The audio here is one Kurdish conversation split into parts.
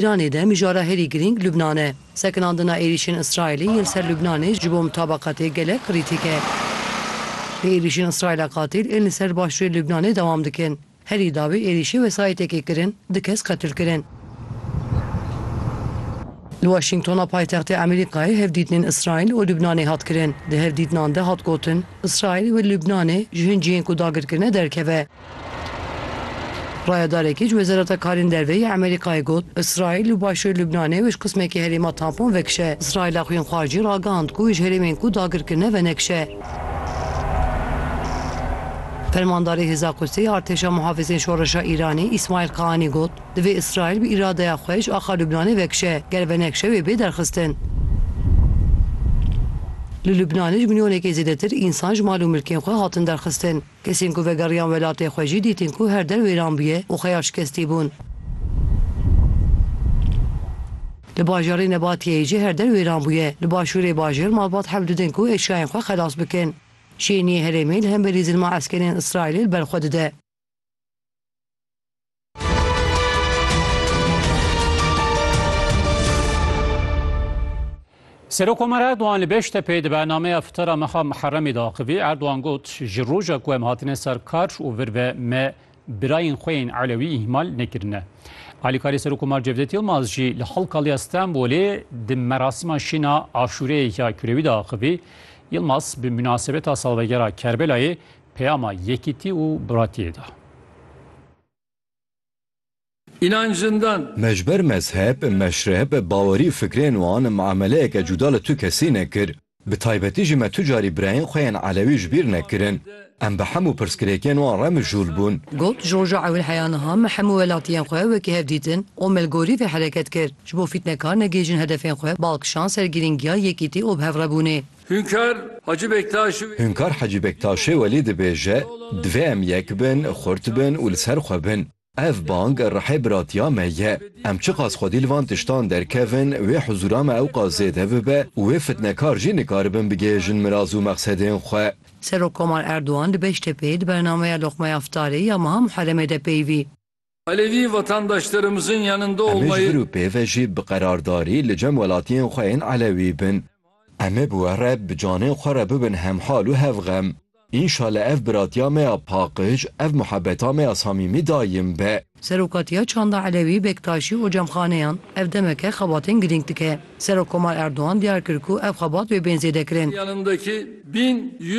Îranê de mijara herî girîng Lubnan e. Sekinandina êrîşên Îsraîlê yên li ser Lubnanê ji bo mutabaqatê gelek qirîtî ke. Bi êrîşên Îsraîla qatîl ên li ser başûrê Lubnanê dewam dikin. Herî dawî êrîşê wesayîtekê kirin, du kes qetil kirin. Li Waşîngtona paytextê Amerîkayê hevdîtinên Îsraîl û Lubnanê hat kirin. Di hevdîtinan de hat gotin, Îsraîl wê li Lubnanê ji hin cihên ku dagirkirine derkeve. Rayedarekî ji Wezareta Karên Derve yê Amerîkayê got, Îsraîl li başûrê Lubnanê û ji qismekî herêma tampon vekişe. Îsraîla xwînxwaz jî ragihand ku ji herêmên ku dagir kirine venekişe. Fermandarê Hêza Qudsê yê Artêşa Mihafizên Şoreşa Îranê Îsmaîl Qaanî got, Divê Îsraîl bi îradeya xwe ji axa Lubnanê vekişe, ger venekişe wê bê derxistin. Li Lubnanê ji milyonekê zêdetir însan ji mal û milkên xwe hatin derxistin. Kesên ku vegeriyan welatê xwe jî dîtin ku her der wêran bûye û xwe ya şikestî bûn. Li bajarê Nebatiyeyê jî her der wêran bûye. Li başûrê bajêr malbat hev didin ku eşyayên xwe xelas bikin. Şêniyê herêmê li hemberî zilma eskerên Îsraîlê li ber xwe dide. Serokomar Erdoğan li Beştepê di bernameya fitara mexa Miherremê de axivî Erdoğan got ji roja ku em hatine ser kar û vir ve me birayên xwe yên Elewî îhmal nekirine. Alîkarê Serokomar Cevdet Yilmaz jî li Halkaliya Stenbolê di merasîma şîna aşûreyê ya kurewî de axivî. Yilmaz bi münasebeta salvegera Kerbelayê Peyama yekîtî û biratiyê da. Înan jindan. Me ji ber mezheb, meşreb, bawerî û fikrên wan muameleyeke cuda li tu kesî nekir. Bi taybetî jî me tu carî birayên xwe yên elewî ji bîr nekirin. Em bi hemû pirsgirêkên wan re mijûl bûn. Got, Ji roja ewil heya niha me hemû welatiyên xwe wekî hev dîtin û me li gorî vê hereket kir. Ji bo fîtnekar negihîjin hedefên xwe, balkişand ser girîngiya yekîtî û bihevrebûnê. Hünkar Hacı Bektaşi ve. Hünkar Hacı Bektaşi Veli dibêje, Divê em yek bin, xurt bin û li ser xwe bin. Ev bang rihê biratiya me ye. Em çiqas xwedî li van tiştan derkevin, wê huzûra me ewqas zêde bibe û wê fitnekar jî nikaribin bigihêjin miraz û mexsedên xwe. Serokkomar Erdogan li Beştepeyê di bernameya Loqmaya Ftarê ya meha Muheremê de peyivî. Em ê ji vir û pê ve jî bi qerardarî li cem welatiyên xwe yên Elewî bin. Em ê bi we re bi canên xwe re bibin hemhal û hevxem. Înşale ev biratiya me ya paqij, ev muhebeta me ya samîmî daîm be. Serokatiya Çanda Elewî Bektaşî û Cemxaneyan, Ev demeke xebatên girîng dike. Serokkomar Erdogan diyar kir ku ev xebat wê bên zêdekirin.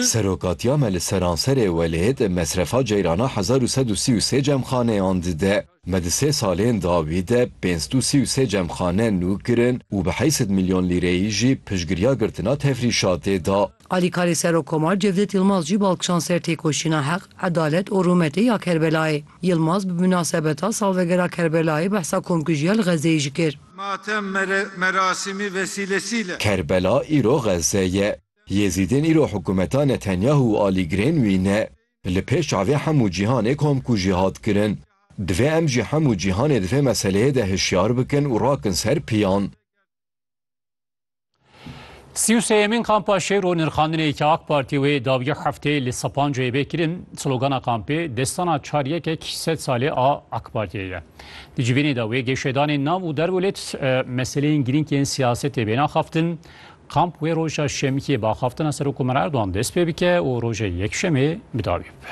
Serokatiya me li seranserê welêt mesrefa ceyrana hezar û sed û sî û sê cemxaneyan dide. Me di sê salên dawî de pênc sed û sî û sê cemxane nû kirin û bi heşt sed milyon lîreyî jî piştgiriya girtina tefrîşatê da. Alîkarê Serokkomar Cevdet Yilmaz jî bal kişand ser têkoşîna heq, edalet û rûmetê ya Kerbelayê. Yilmaz bi minasebeta salvegera Kerbelayê behsa komkujiya li Xezzeyê jî kir. Matem merasîmî vesîlesî le. Kerbela îro Xezze ye. Yêzîdên îro hikûmeta Netanyahu û alî girên wî ne. Li pêş çavê hemû cîhanê komkujî hat kirin. Divê em jî hemû cîhanê di vê meseleyê de hişyar bikin û rakin ser piyan. Sî û sêyemîn kampa Şêro nirxandinê ke AK Partî wê dawiya hefteyê li Sapancayê bê kirin, slogana kampê destana çar yekek sed salê a AK Partiyê ye. Di civînê de wê gêşedanên nav û derwelêt meseleyên girîng yên siyasetê bêne axaftin. Kamp wê roja Şemikê bi axaftina Serokomar Erdogan dest pê bike û roja Yekşemê bi dawî bibe.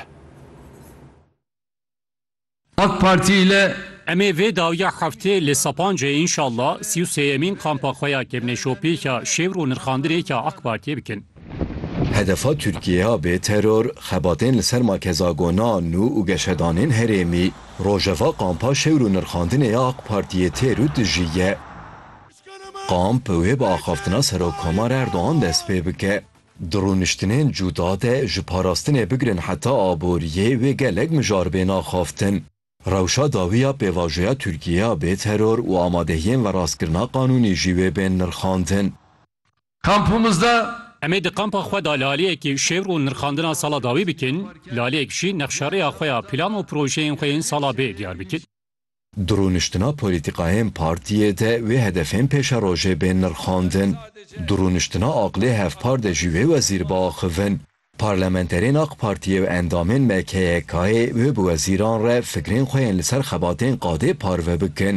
AK Partî ile. Em ê vê dawiya heftê li Sapancê înşallah sî û sêyemîn kampa xwe ya kevneşopêka şêwr û nirxandirê ya AK Partiyê bikin. Hedefa Tirkiyeya bê teror, xebatên li ser makezagona nû û geşedanên herêmî, rojeva kampa şêwr û nirxandinê ya AK Partiyê têr û tijî ye. Kamp wê bi axaftina Serokkomar Erdogan dest pê bike. Di rûniştinên cuda de ji parastinê bigirin heta aboriyê wê gelek mijar bên axaftin. Rewşa dawî ya pêvajoya Tirkiyê ya bê teror û amadehiyên veraskirina qanûnî jî wê bên nirxandin. Kampimizde. Em ê di kampa xwe de laleyekî şêwr û nirxandina sala dawî bikin, laleyek jî nexşerêya xwe ya plan û projeyên xwe yên sala bê diyar bikin. Di rûniştina polîtîkayên partiyê de wê hedefên pêşerojê bên nirxandin. Di rûniştina aqilê hevpar de jî wê wezîr biaxivin. Parlamenterên AK Partiyê û endamên MKYK'ê wê bi wezîran re fikrên xwe yên li ser xebatên qadê parve bikin.